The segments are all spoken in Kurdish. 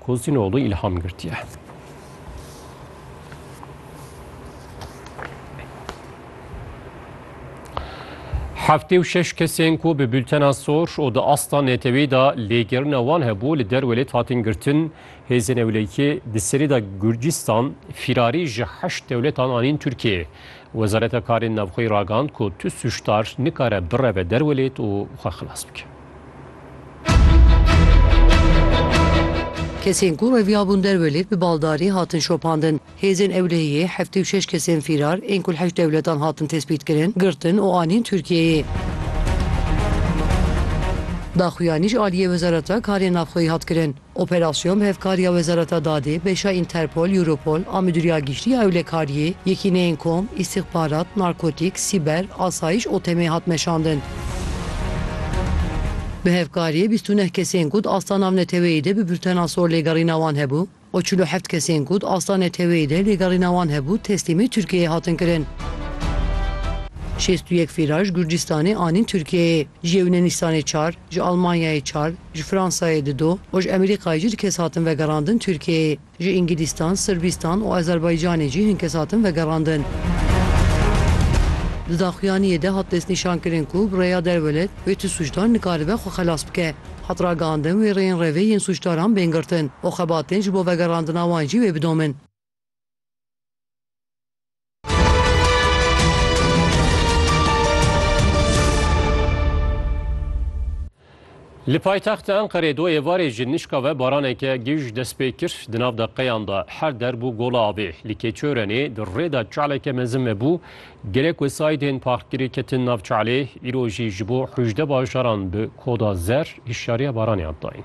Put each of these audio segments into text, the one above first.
Kozînoglû îlham girtiye. Heftê û şeş kesên ku bi bültena sor û di asta neteweyî de lêgerina wan hebû li derwelêt hatin girtin, hêzên ewlekî di serî de Gurcistan fîrarî ji heşt dewletan anîn Tirkiyeyê. Wezareta Karên Navxweyî ragand ku tu sûcdar nikare bireve derwelêt û xwe xilas bike. Kesên ku reviyabûn derve lê bi baldarî hatin şopandin. Hêzên ewlehiyê heftê û şeş kesên fîrar ên ku li heşt dewletan hatin tespîtkirin, girtin û anîn Tirkiyeyê. Daxuyanî ji aliyê Wezareta Karên Navxweyî hat kirin. Operasyon bi hevkariya Wezareta Dadê, Beşa Interpol, Europol a Midûriya Giştî ya Ewlekariyê, Yekîneyên Kom, Îstixbarat, Narkotîk, Sîber, Asayiş û TEM'ê hat meşandin. Bi hevkariyê bîst û neh kesên ku di asta navneteweyî de bi birtena sor lêgerîna wan hebû û çil û heft kesên ku di asta neteweyî de lêgerîna wan hebû teslîmê Tirkiyeyê hatin kirin. Şêst û yek fîra ji Gurcîstanê anîn Tirkiyeyê, ji Yewnenistanê çar, ji Almanyayê çar, Ji Fransayê di do û ji Emerîkayê jî du kes hatin vegerandin Tirkiyeyê. Ji Îngilîstan, Sirbîstan û Azerbaycanê jî hin kes hatin vegerandin. Di daxuyaniyê de hat destnîşankirin ku bi rêya derwelet wê tu sûcdar nikaribe xwe xelas bike. Hat ragihandin wê rêyên revê yên sûcdaran bên girtin û xebatên ji bo vegerandina wan jî wê bidomin. Li paytexta Enqerê do êvarê ji nişka ve baraneke gij dest pê kir. Di nav deqeyan de her der bû gola avê. Li Keçorenê di rê de çaleke mezin vebû. Gelek wesayîdên parkgirê ketin nav çalê. Îro jî ji bo hûjde bajaran bi koda zer hişyariya baraniyan dayîn.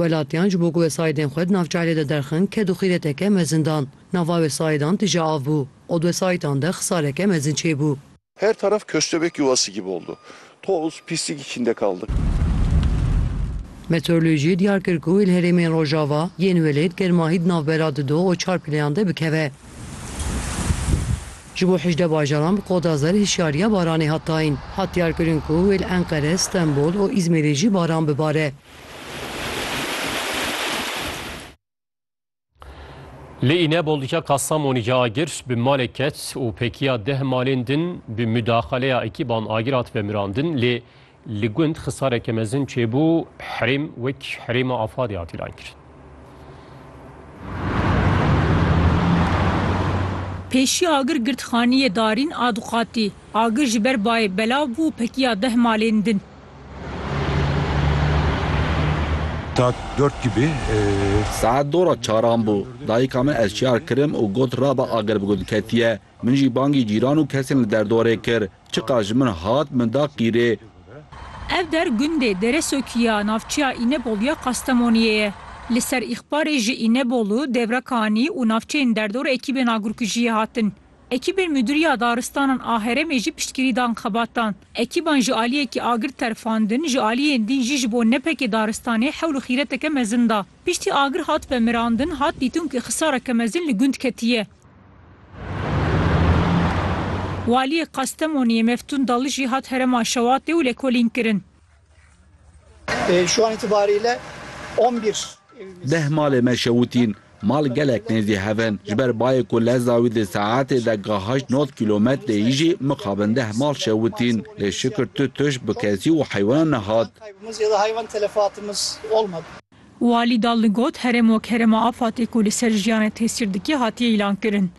Welatiyan ji bo ku wesaîdên xwe di nav çaylê de derxin ked û xîreteke mezin dan. Nava wesaidan tije av bû û di wesaitan de xisaleke mezin çêbû. Her taraf köstebek yuvası gibi oldu. Toz, pislik içinde kaldık. Meteoroloji diyar kir ku li herêmên rojava yên welêt germahî di navbera di do û çar pileyan de bikeve. Ji bo hejdeh bajaran bi koda zer hişyariya baranê hat dayîn. Hat diyarkirin ku wê li Enqere, Stenbol û Îzmîrê jî baran bibare. Li Înebol diçe Kastamonî ca agir bi malek ket û pekiya deh malên din bi mudaxaleya ekîban agir hatibe mirandin lê Li gund xisareke mezin çêbû, herêm wek herêma Afadê hat îlankirin. Pêşî agir girtxaneyê Darîn a Duxatî. Agir ji ber bayê belav bû û pekiya deh malên din. Saet dört gibi. Saet dora çaran bû. Dayika min eşyar kirim û got rabe agir bi gund ketiye. Min jî bangî cîran û kesên li derdoerê kir. Çiqas ji min hat, min da qîrê. Ev der gundê Deresokî ya navçeya Înebol ya Kastemoniyê ye. Li ser îxbarê ji Înebolu, Devrekanî û navçeyên derdor ekîbên agurkujiyê hatin. Ekîbên Mudiriya Daristanan a herêmê jî piştgirî dan xebatan. Ekîban ji aliyekî agir terfandin, ji aliyên din jî ji bo nepekê daristanê hewl û xîreteke mezin da. Piştî agir hat vemirandin, hat dîtin ku xisareke mezin li gund ketiye. Waliyê Kastemoniyê Meftun Dali jî hat herêma Şewatê û lêkolîn kirin. Deh malê me şewitîn. Mal gelek nêzî hev in. Ji ber bayê ku leza wî di saetê de ga heşt nod kîlometrê yî jî mixabin deh mal şewitîn. Lê şikir tu tuş bi kesî û heywanan nehat. Walî dal li got, Herêm wek herêma afatê ku li ser jiyanê tesîr dike hatiye îlankirin.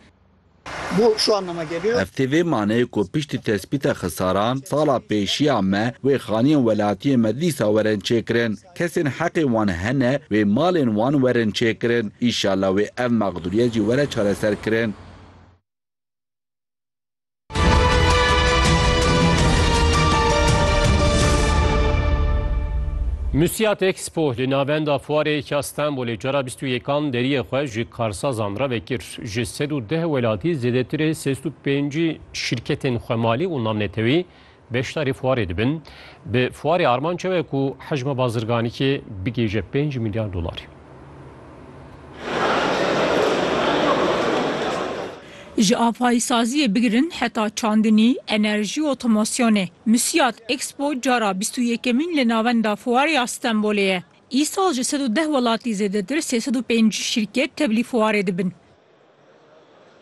Ev tê vê maneyê ku piştî tespîta xisaran, sala pêşiya me wê xaniyên welatiyên me dîsa werin çêkirin. Kesên heqê wan hene wê malên wan werin çêkirin. Înşallah wê ev mexdûriyet jî were çareserkirin. Musiat Expo li navenda fuarê ya Stenbolê cara bîst û yekan deriyê xwe ji karsazan re vekir. Ji sed û deh welatî zêdetirê sêst û pêncî şîrketên xwemalî û navnetewî Beşdarê fuarê dibin. Bi fuarê armanca ye ku hejma bazirganîkê bigihêje pênc milyar dolarî. Ji avayîsaziyê bigirin heta çandinî, enerjî, otomasyonê. Musiyat Expo cara bîst û yekemîn li Navenda Fuarê ya Stenbolê ye. Îsal ji sed û deh welatî zêdetir sê sed û pêncî şîrket tevlî fuarê dibin.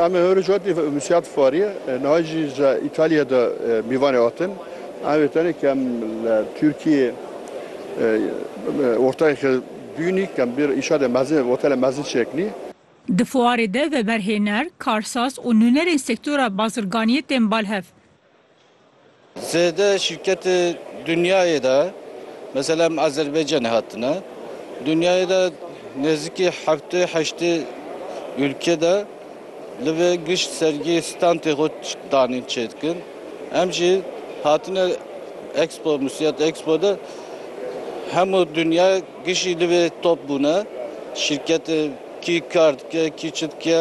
Em ê hêrî cotî misiyat farî niha jî ji Îtalyayê de bîvanê hatin. Em vê tenê ke em li Tirkiyê ortayeke dûnî ke em bêr îşa de mezin hotelê mezin çêkinî. Di fuarê de veberhêner, karsaz û nûnerên sektora bazirganiyê tên bal hev. Zêde şîrketê dinyayê de mesela em Azerbaycanê hatine. Dinyayê de nêzîkî heftê heştê ûlke de li vê gişt sergî standê xwe danîn çêdikin. Em jî hatine Expo Musiyat Expo de hemû dinya gişî li vê top bûne. Şîrketê kî kar dike, kî çi dike.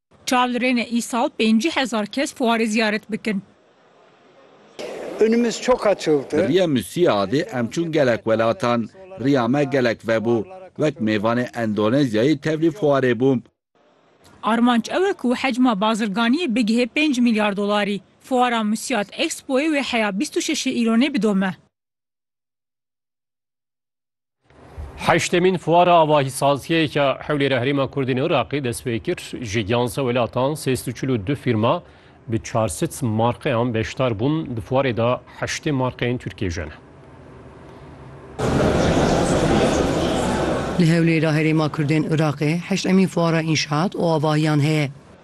Çav li rêne îsal pêncî hezar kes fuarê ziyaret bikin. Önümüz çok açıldı. Bi riya Müsiyadê em çûn gelek welatan. Riya me gelek vebû. Wek mêvanê Endonezyayê tevlî fuarê bûm. Armanc ew e ku hecma bazirganiyê bigihê pênc milyar dolarî. Fuara Müsiyad Expoyê wê heya bîst û şeşê îlonê bidome. Heştemîn fuara avahîsaziyê ya hewlê re herêma Kurdên Iraqê dest pê kir ji giyanse welatan sê sed û çil û du fîrma bi çar sed marqeyan beşdar bûn di fuarê de heştê marqeyên Tirkiyê jî ne. Li Hewlêr a herêma Kurdên Iraqê heştemîn fuara înşaat û avahiyan heye.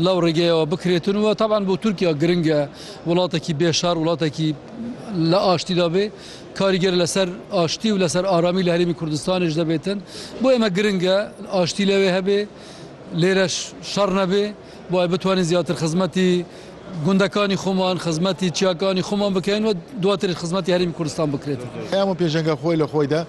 Law rêgeya bikirêtin we taban bo Tirkiya giring e. Welatekî bê şer, welatekî li aştî de bê, karîger li ser aştî û li ser aramî li Herêmî Kurdistanê ji de bêtin. Bo ême giring e aştî lewê hebê, lêre şer nebê. Bo ev bitwanîn zêdetir xizmetî gundekanî xoman, xizmetî çiyakanî xoman bikeyn we duatir xizmetî Herêmî Kurdistan bikirêtin. Hemû pêşenga xwe li xwe de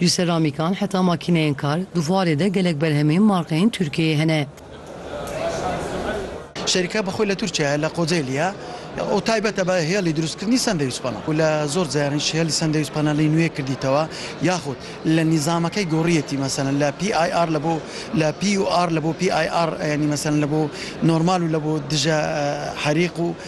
Ji seramîkan heta makîneyên kar, di fuarê de gelek berhemên markeyên Tirkiyeyê hene. Şerîka bi xwe li Tirkiyeyê, li Kocaeliya û taybet e bi hêlî dirûstkirinî sendewîç pana ku li zor caran ji hêlî sendewîç pana lê nûyê kirdîtewe yaxud li nîzameke goriyetî meselen li PIR li bo li PUR li bo PIR yanî meselen li bo normal û li bo dije herîq û